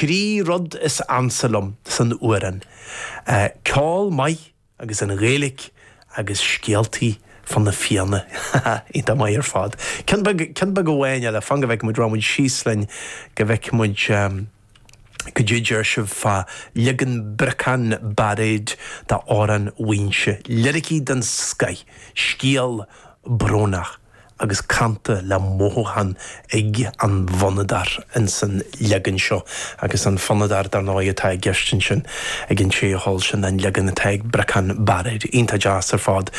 Trí rud is ansa liom san fhuarán, ceol maith agus an Ghaeilic agus scéaltaí fá na Fianna. Iontach maith ar fad. Ceann beag, ceann beag amháin eile, fan go bhfeice muid, raghaidh muid síos linn go bhfeice muid, goidé a deir sibh fá leagan Briocán Bairéad d'Amhrán Mhaínse. Liricí den scoith, scéal brónach. agus canta le mothúchán ag an bhfonnadóir ins an leagan seo, agus an fonnadóir dar ndóigh atá i gceist ansin ag an té a cheol sin ná an leagan atá ag Briocán Bairéad, iontach deas ar fad.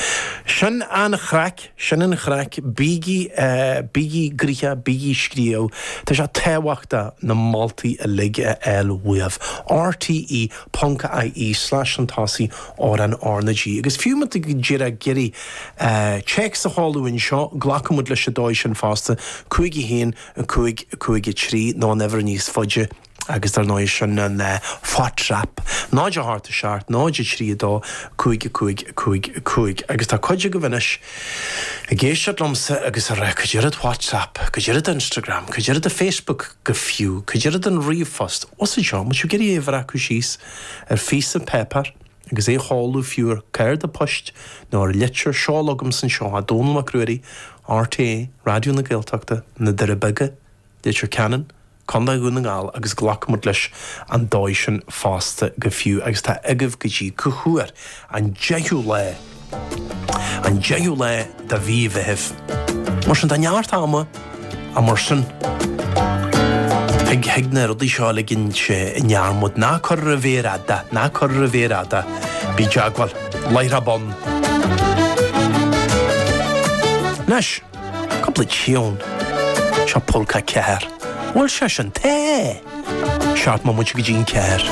Sin an chraic, sin an chraic, bígí, bígí gnoitheach, bígí ag scríobh, tá sé tábhachtach na moltaí uilig a fháil uaibh. RTÉ.ie/an tosaí, amhrán RnaG. Agus fiú má tá tú díreach ag iarraidh Téacs a chur chugainn anseo, glacfaidh muid leis an dóigh sin fosta, 'cúig a haon, cúig, cúig a trí', nó an uimhir níos faide, agus dar ndóigh sin an WhatsApp 0 a hocht a 7, 0 a trí a dó, 5 a cúig, 5 a cúig. Agus tá cuid agaibh anois ag éisteacht liomsa agus ag rá, 'cad é rud WhatsApp, cad é rud Instagram, cad é rud Facebook go fiú, cad é rud an ríomhphost, 'what's a job? An bhfuil sibh ag iarraidh é a bhreacadh síos ar phíosa páipéir? Agus é a chur go fiú ar chárta poist nó ar litir seol chugamsa anseo chuig Dónall Mac Ruairí, RTÉ, Raidió na Gaeltachta, Na Doirí Beaga, Leitir Ceanainn, Co. Dhún na nGall agus glacfaidh muid leis an dóigh sin fosta go fiú agus tá agaibh go dtí cá huair, an deichiú lá! An 10ú lá de mhí Mheithimh. Mar sin, tá neart ama ach mar sin. Thig na rudaí seo a ligint i ndearmad. Ná cuir ar an mhéar fhada, ná cuir ar an mhéar fhada. Bí i dteagmháil. Láithreach bonn. Anois, cúpla tiúin. Seo Pólca 4. Bhuel, seo sin tae! Seacht mbomaite go dtí an ceathair.